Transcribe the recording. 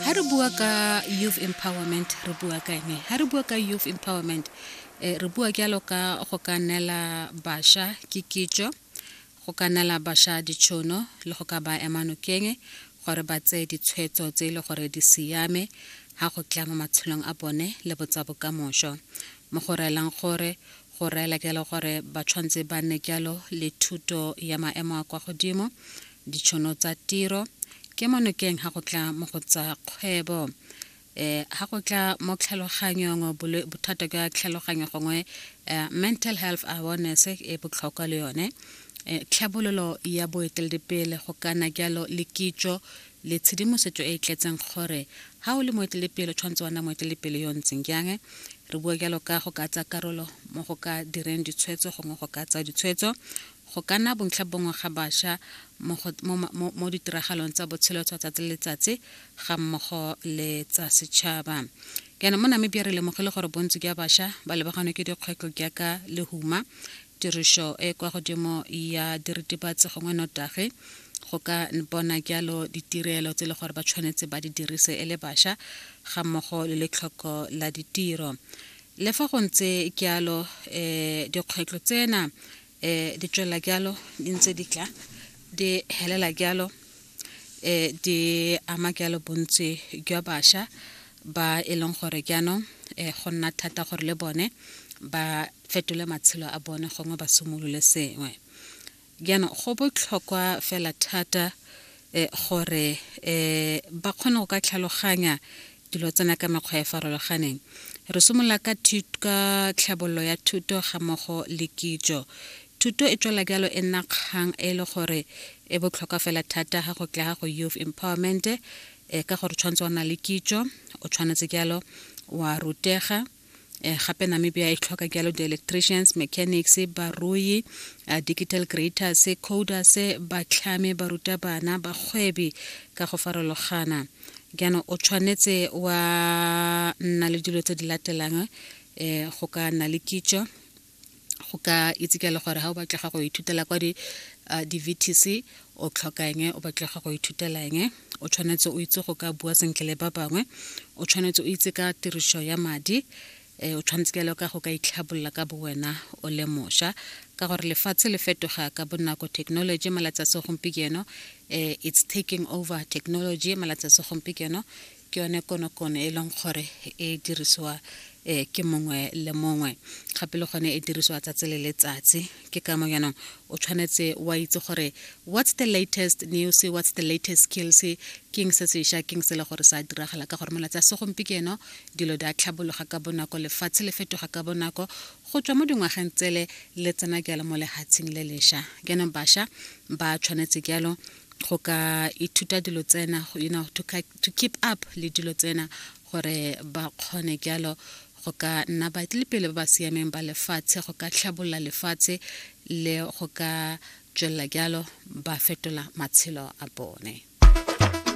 ha re bua ka youth empowerment re bua ka ene ha re bua ka youth empowerment eh, re bua jalo ka go ka neela bašwa ke kitso go ka neela bašwa ditšhono le go ka ba ema nokeng gore ba tseye ditshwetso tse e le gore di siame ga go tla mo matshelong a bone le botsa bokamoso mo go reelang gore go reela jalo gore ba tshwanetse ba nne jalo le thuto ya maemo a kwa godimo ditšhono tsa tiro ke mo nokeng ga go tla mo go tsa kgwebo um eh, ga go tla mo tlhaloganyong bothata ka tlhaloganyo gongwe eh, mental health awareness e botlhokwa le yone eh, tlhabololo ya boeteledipele go kana jalo le kitso le tshedimosetso e e tletseng gore ga o le moeteledipele o tshwanetse wa nna moeteledipele yo ntseng jang re bua jalo ka go ka tsa karolo mo go ka direng ditshwetso gongwe go ka tsa ditshwetso Go ka nna bontlhabongwe ga basha mo, mo, mo, mo ditiragalong tsa botshelo tsa tsatsi le letsatsi ga mmogo le tsa setšhaba. Jaanong mo Namibia re lemogile gore bontsi jwa basha ba lebaganwe ke dikgwetlho jaaka lehuma, tirišo e kwa godimo ya diritibatsi gongwe notagi go ka bona jalo ditirelo tse e le gore ba tshwanetse ba di dirise e le basha ga mmogo le letlhoko la ditiro le fa go ntse jalo um dikgwetlho tsena eh, di tswelela jalo di ntse di tla di helela jalo eh, di ama jalo bontsi jwa bašwa ba e leng gore jaanong eh, go nna thata gore le bone ba fetole matshelo a bone gongwe ba simolole sengwe jaanong go botlhokwa fela thata eh, gore eh, ba kgone go ka tlhaloganya dilo tsena ka mekgwa e farologaneng re simolola ka ka tlhabololo ya thuto ga mogo le kitso thuto e tswela bjalo e nna kgang e le gore e botlhokwa fela thata ga go tla ga go youth empowerment e ka gore tshwanetse o na le kitso o tshwanetse jalo wa rutega eh, gape namibia e tlhoka jalo di-electricians mechanics barui uh, digital creators coders batlhame barutabana bagwebi ka go farologana jaanong o tshwanetse wa nna le dilo tse di latelang um go ka nna le kitso go ka itse ka le gore ga o batlega go ithutela kwa di-vtc di o tlhokang o batlega go ithutelang o tshwanetse o itse go ka bua sentle le ba bangwe o tshwanetse o itse ka tiriso ya madi um o tshwanetse kelo ka go ka itlhabolola ka bowena o le mošwa ka gore lefatshe le fetoga ka bonako technology malatsi a segompieno um it's taking over technology malatsi a segompieno ke yone konokono e leng gore e dirisiwa um ke mongwe le mongwe gape le gone e dirisiwa tsatsi le letsatsi ke ka mo yanong o tshwanetse wa itse gore what's the latest news what's the latest skills keng se sešwa keng se le gore sa diragala ka gore malatsi a segompieno dilo di a tlhabologa ka bonako lefatshe le fetoga ka bonako go tswa mo dingwageng tsele le tsena jalo mo lehatsheng le lesha jaanong basha ba tshwanetse jalo go ka ithuta dilo tsena you know to, to keep up le dilo tsena gore ba kgone jalo go ka nna baetlelepele ba ba siameng ba lefatshe go ka tlhabolola lefatshe le go ka tswelela jalo ba fetola matshelo a bone